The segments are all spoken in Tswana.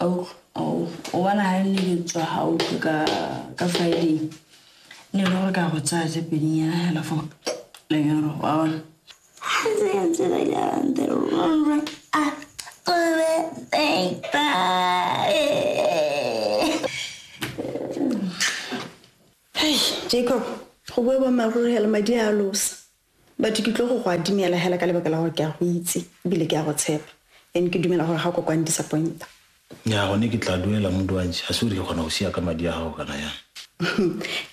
o bona ga nne ke tswa gautlwe ka friday ne le gore ka go tsaya tse pedinyana fela fo lenyoro wa bona jacob go bue bommaruregela madi a losa Batho ke tlo go go adimela hela ka lebaka la gore ke a go itse ebile ke a go tshepa and ke dumela gore ga o ka kwa ndisappointa. Nnyaa, gone ke tla duela Muduantshi. Ga se gore ke kgona go sia ka madi a gago kana yang.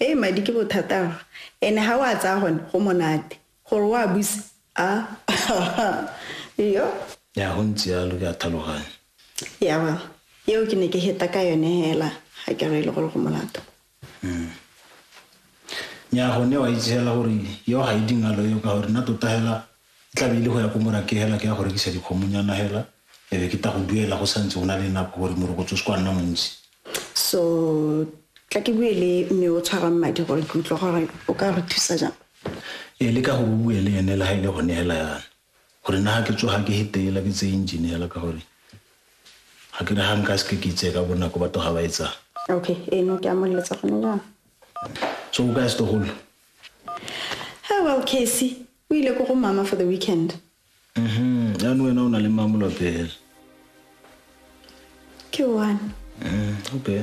Hei, madi ke bothata fa. Ene ga o a tsaya gone go monate. Gore o a buse, aah, yo. Nnyaa, go ntse yalo, ke a tlhaloganya. Yeah, well, eo ke ne ke heta ka yone hela ga ke re e le gore go molato. Mm. Nya gone wa itse hela gore yo ga e dingalo yo ka gore nna tota hela e tlabe ile go ya ko morake hela ke ya go rekisa dikgomonyana hela ebe ke ta go duela go santse go na le nako gore morokotso o se kwa nna montsi so tla ke bue le mme o tshwarang madi gore ke utlwa gore o ka re thusa jang ee le ka gore o bue le ene le ga e le gone hela yana Gore na ke tsoga ke hetela ke tseye engine yala ka gore ga ke re ga nka seke ke itseye ka bonako batho ga ba etsang. Okay, eno ke a mo letsa gone jaana. So o ka se togolo? Hey, well, Casey, o ile ko go mama for the weekend. Mhm, jaanong wena o na le mamolo pele. Ke one. Mm, okay.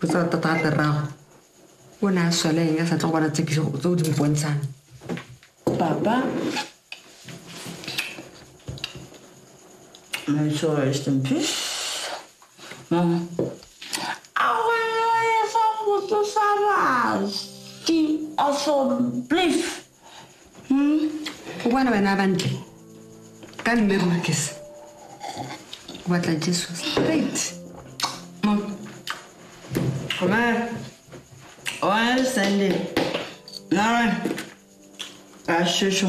go tsaya tata a terrago o ne a sweleng a sa tlo go bona tsekiso tse o di mpontshang papa May so rest in peace. Mama. Akwelele sa motho sa rasi. Also, please. Mm, o bona wena a bantle ka mme rurkes o batla jesu straight mom koma one sunday nara ka shesho